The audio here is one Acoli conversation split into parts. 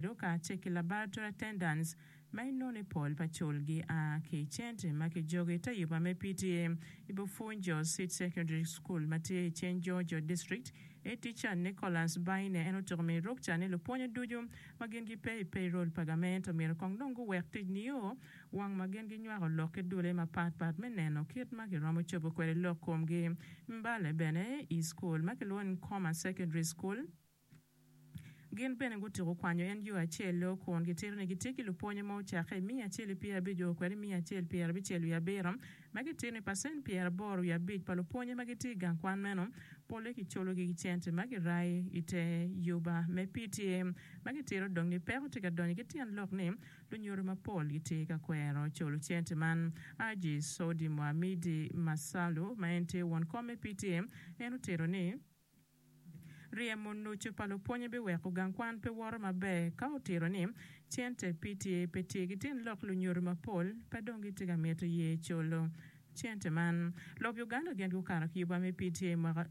Duka tye ki laboratory attendants ma inoni pol pa cul gi a ki i centre ma ki jogo ite yuba me PTA i Bufunjo Seed Secondary School ma tye i Chenjojo District. Head teacher Nicholas Baine en otuko mi rukca ni lupwonyo ducu ma gin gi pe i payroll pa gament omyero kong dong gu wek tic nio wang ma gin gi nywako lok ki dule ma pat pat me neno kit ma ki romo cobo kwede lok komgi mbale bene i school ma ki lwongo ni Coma Secondary School. Gin bene gutyeko kwanyo en yo acel-lo, kun gitito ni gitye ki lupwonye ma ocakke i miya acel i pyerabic-o kwede i miya acel pyerabicel wiye abiro, ma gitito ni pacent pyeraboro wiye abic pa lupwonye ma gitye i gang kwan meno polle kicologi ki cente ma girayo i te yuba me PTA ma gitito dong ni peko tye ka donyo ki tyen lok ni lunyodo mapol gitye ka kwero colo cente man. Haji Sodi Muhamidi Masalu ma en tye won kom me PTA en otito ni, Ryemo nucu pa lupwonye biweko gang kwan pe woto maber ka otito ni cente PTA pe tye ki tin lok lunyodo mapol pe dong gitye ka mito ye colo cente man. Lok Uganda gin gukato ki yuba me PTA mwaka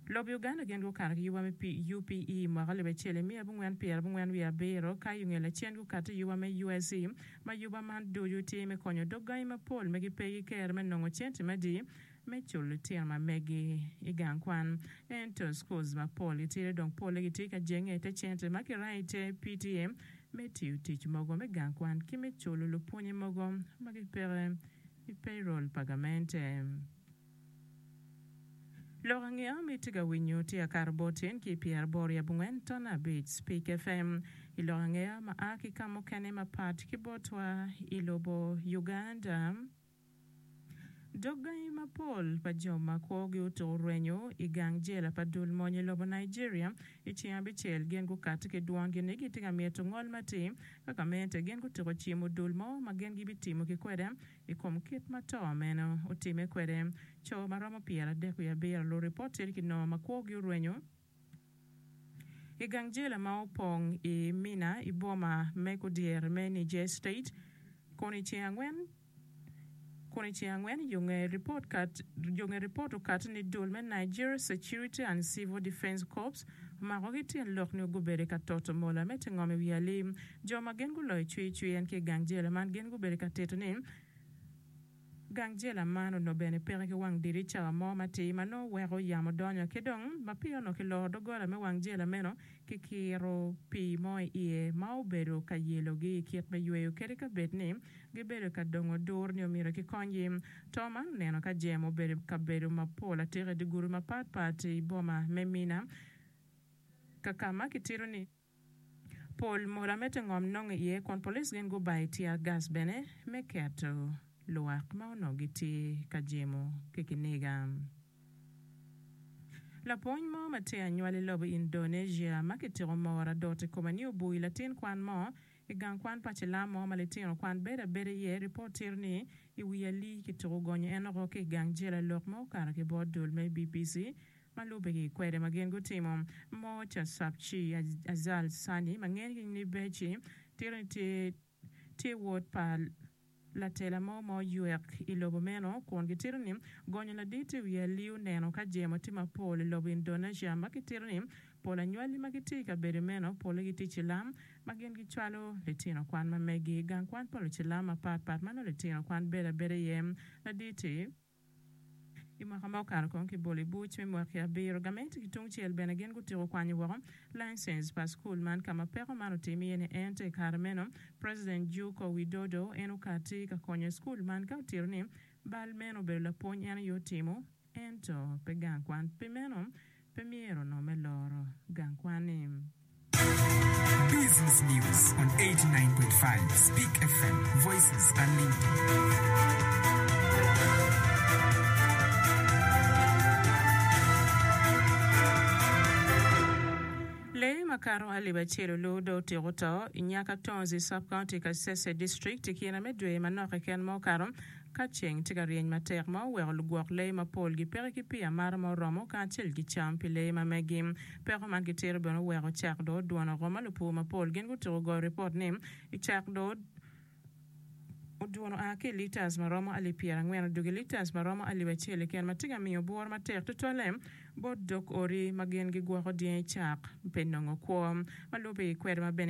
Lok Uganda gin gukato ki yuba me UPE mwaka alip acel imiya abongwen pyera abongwen wiye abiro ka yungel acen gukati yuba me USE ma yuba man ducu tye me konyo dog gangi mapol ma gipe ki kero me nongo cente madi me culo litino ma megi i gang kwan. Ento schools mapol gitidi dong polle gitye ka jenge i te cente ma kirayo i te PTA me tiyo tic mogo me gang kwan ki me culo lupwonye mogo ma gipeke i payroll pa gamente. Lok angeya ma itye ka winyo tye akato bot tyen ki pyeraboro i abongwen ton abic Speak FM i lok angeya ma a ki ka mukene mapat ki botwa i lobo Uganda. Dog gangi mapol pa jo ma kwogi otur rwenyo i gang jela pa dul mony i lobo Nigeria i ceng abicel gin gukati ki dwongi ni gitye ka mito ngol matir ka gamente gin gutyeko cimo dul mo ma gin gibitimo ki kwede i kom kit ma to meno otime kwede. Co ma romo pyeradek wiye abiro luripot tye ki nongo ma kwogi orwenyo. I gang jela ma opong i Minna i boma me kudyeri me Niger State kun i ceng angwen kun i ceng angwen yo nge report kat yo nge report okati ni dul me Niger Security and Civil Defence Corps omako ki tyen lok nio gubedi ka toto mola me tingo mi wi alim jo ma gin guloyo cwir cwir en ki i gang jela man gin gubedi ka tito ni Gang jela man onongo bene peke ki wang dirica mo matir ma nongo weko yamo donyo ki dong mapiyo onongo kiloro doggola me wang jela meno ki kiro pii mo i iye ma obedo ka yelogi i kit me yweyo kadi ka bed ni gibedo ka dongo dur nio myero kikonygi. To man oneno ka jemo obedo i kabedo mapol atika i dye gudi mapatpat i boma me Minna ka ka ma kitito ni Pol mola me tingom nongo iye kun police gin gubayo tear gas bene me keto lwak ma onongo gitye ka jemo ki kiniga. Lapwony mo ma tye anywal i lobo Indonesia ma kitiko Moora Dotty Komaniubuy latin kwan mo I gang kwan pa cilam mo ma litino kwan bedo abeda iye, ripot tito ni, I wi alii ki tuku gonyo en oko ki i gang jela lok ma okato ki bot dul me BBC ma lubbe ki kwede ma gin gutimo. Mocha Sapchi, Azal Sani ma ngene ki nying Beci, tito ni tye wod pa Latela mo ma oywek i lobo meno kun gitito ni gonyo ladit i wi aliu neno ka jemo tye mapol i lobo Indonesia ma kitito ni pol anywali ma gitye i kabedo meno polle gitye cilam ma gin gicwalo litino kwan ma megi i gang kwan pa lucilam mapatpat ma nongo litino kwan bedo abeda iye ladit-ti. I mwaka ma okato kong ki bolo i buc me mwaki abiro, gamente ki tungcel bene gin gutiko kwanyo woko laincense pa cukul man ka ma peko man otim iye ni ento i kare meno President Juuko Widodo en okati ka konyo i cukul man ka otito ni bal meno obedo lapwony en aye otimo ento pe gang kwan pi meno Pe myero nongo me loro gang kwani. Business News on 89.5 Speak FM, Voices Unlimited. Lee makato alip acel olu dong otyeko to i Nyakatonzi Sub-County, Kasese District i kine me dwe manok keken ma okato, Ka ceng tye ka ryeny matek ma oweko lugwok lee mapol gipeke ki pi amata ma oromo kacel ki cam pi lee ma megi, peko man ki tiro bene oweko cak doo dwono oko ma lupur mapol gin gutuko goyo ripot ni i cak doo odwono a ki i litas ma romo alip pyera angwen odwogo i litas ma romo alip acel keken ma tye ka miyo bworo matek tutwalle bot dok odi ma gin gigwoko dyangi cak pe nongo kwo ma lube i kwede ma bene